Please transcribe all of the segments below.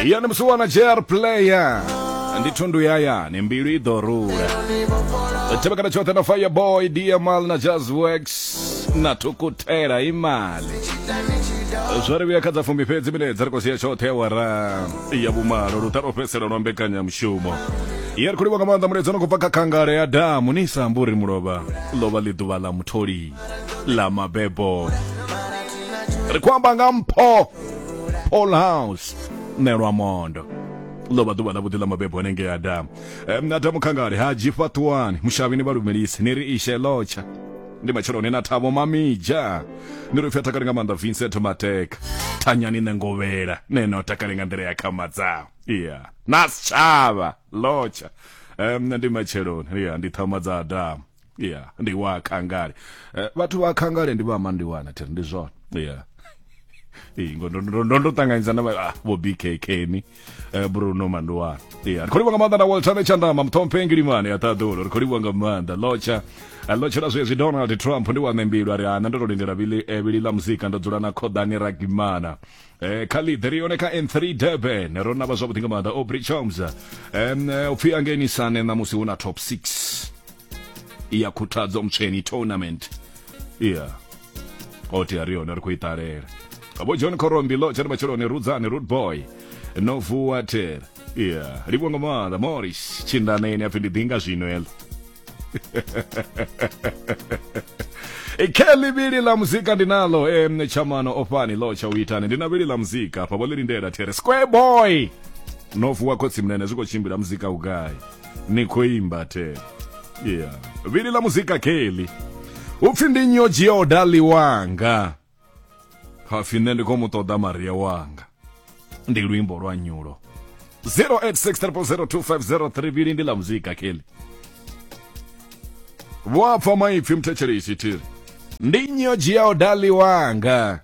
ya ni musiwana jer player ndi thundu ya yani mbilu i ḓo rula tevhekana tshoṱhe na fireboy dmal na jazzworx na thukutela imali zwa ri vhuya kha dza fumi fhedzi mine dza ri khou sia tshoṱhe ya wara ya vhumalo luṱa lwo fhedzisela lwa mbekanyamushumo ya ri khou livha nga maanḓa muledzi no khou bva kha khangale ya damu ni sa ambi uri mulovha lovha ḽi ḓuvha ḽa mutholi ḽa mabebo ri khou amba nga mpho all house nelwa mondo ḽo vha ḓuvha ḽa vhuḓi ḽa mabebo hanengei adamu um, adamu khangale ha dzhifa ṱuwani mushavhini vha lumelisi ni ri ishe lotsha ndi matsheloni na thabo mamija ni ri pfi a takale nga maanḓa vincent mateka thanyani nṋe ngovhela ne no takale nga nḓila ya khama dzao iya na sitshavha lotsha um, ndi matsheloni iya ndi thama dza adamu yeah ndi wa khangale Eh, vhathu vha khangale ndi vha mandiwana thiri ndi zwone yeah Ee, ngo- ndo- ndo- ndo- ndo ṱanganyisa na vha- ah, vho bkk ni eh, bruno mandiwana yeah ri khou livha nga maanḓa na walter vetshandama muthomphe ngilimane ya ṱaḓulo ri khou livha nga maanḓa lotsha Eh, lotsha la zwezwi donald trump ndi wa ṋembilwa ri ana ndo to lindela vili eh, vili ḽa muzika ndo dzula na khoḓani ragimana eh khalid ri yone kha n3 durban ro navha zwavhuḓi nga maanḓa obri choms um, eh, upfhi angenisane ṋamusi hu na top 6 iyakhuthadzwa mutsheni tournament yeah oti ari yona ri khou i ṱalela vho john korombilo tshari matshiloni rudzani root boy no vuwa tera yeah livho nga maanḓa morris tshindaneni apfi ndi ḓinga zwino elo ikheli vhili ḽa muzika ndi nalo em chamano ofhani ḽo tsha u itani ndi na vhili ḽa muzika hafha vho ḽi lindela there square boy no vuwa khotsi mnene zwi khou tshimbila muzika u gai ni khou imba the yeah vhili ḽa muzika keli upfhi ndi nyo dzhia odali wanga hapfi nṋe ndi khou mu ṱoḓa maria wanga ndi luimbo lwa nyulo 0863002503 vhili ndi ḽa muzika keli vho apfa maipfi mthetshelei tshithiri ndi nyo dzhia odali wanga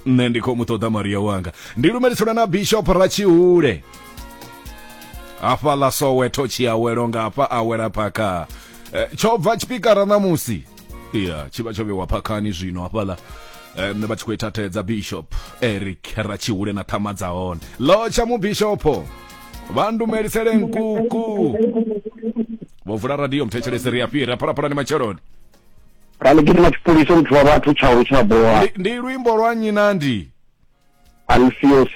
nṋe ndi khou mu ṱoḓa maria wanga ndi lumelisana na bishop ratshihule hafha ḽa soweto tshiawelo nga hafha awela phakha Eh, tsho bva tshipikara ṋamusi ya tshi vha tsho vhewa phakhani zwino hafhaḽa Eh, nṋe vha tshi khou ithathedza bishop eric ratshihule na ṱhama dza hone lotsha mubishopo vha ndumelisele nkuku vho vula radio mthetshelesi ri a fhira phalaphalani matsheloni ra ḽi gidima tshipholisa muthu wa vhathu tsha lu tsha bola ndi luimbo lwa nnyi na ndi alfios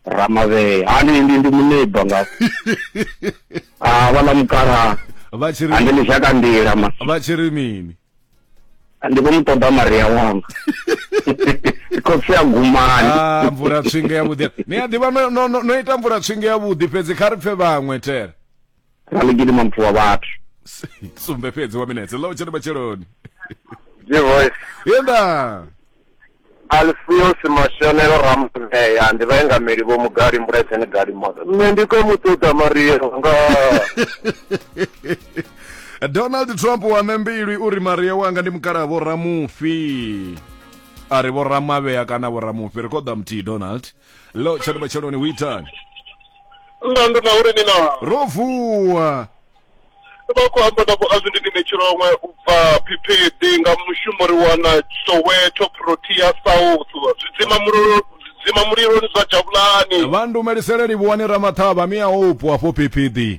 ramavhee hani ndi ndi muneba nga a ah, vhala mukala vha tshi ri ande ni shaka ndila ma vha tshi ri mini ndi vho muṱoḓa maria wanga khotsi ya gumani ah, mvula tswinge ya vhuḓi ni a ḓivha no ita mvula tswinge ya vhuḓi fhedzi kha ri pfe vhaṅwe tere raligidi mampfu wa vhathu sumbe fhedzi wa minetse lo tshena matsheloni G-Voice. yenda Alfios Mashonelo Rampeya ndi vhaengameli vho Mugali Mbuledzeni Gali Moto. Nṋe ndi khou mu ṱoḓa Mario nga donald trump wa membilwi uri maria wanga ndi mukalaha vhoramufi a ri vhoramavhea kana vhoramufi ri khoḓa muthihi donald lo tshani matsheloni hu itani nna ndo na uri ni na ro vuwa vha khou amba na vhoazindinine tshilongwe u bva phiphiḓi nga mushumo ri wana soweto protea south zwidzima mulilo zwidzima muliloni zwa javhulani vha ndumelisele livhuwani ramaṱhavha miya upo afho phiphiḓi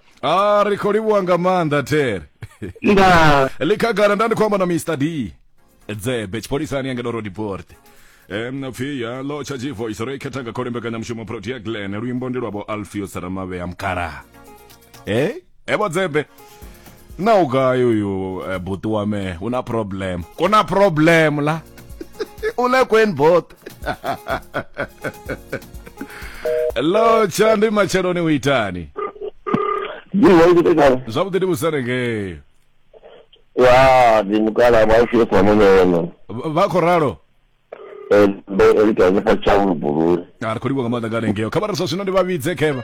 a ri khou livhuwa nga maanḓa tere nda likhagala nda ndi khou amba na mr d dzebe tshipholisani ya ngedo rodiport um pfi ya lo tsha voice ro i khetha nga khole mbekanyamushumo protea glen luimbo ndi lwavho alfios ramavhea mukalaha e evo dzebe na u gai uyu eh, buti wa me una problem kuna problem la u le kweni bot lo tshandwi matsheloni u itani ndiwaikutekala zwavhuḓi ndi vhusane ngei wa ndi mukala vhaufie kwa munono Vha- vha khou ralo ndo elikanefa tshaulu bulule a ri khou livhuwa nga maanḓa nga lengeo kha vha ri zwa zwino ndi vha vhidze khevha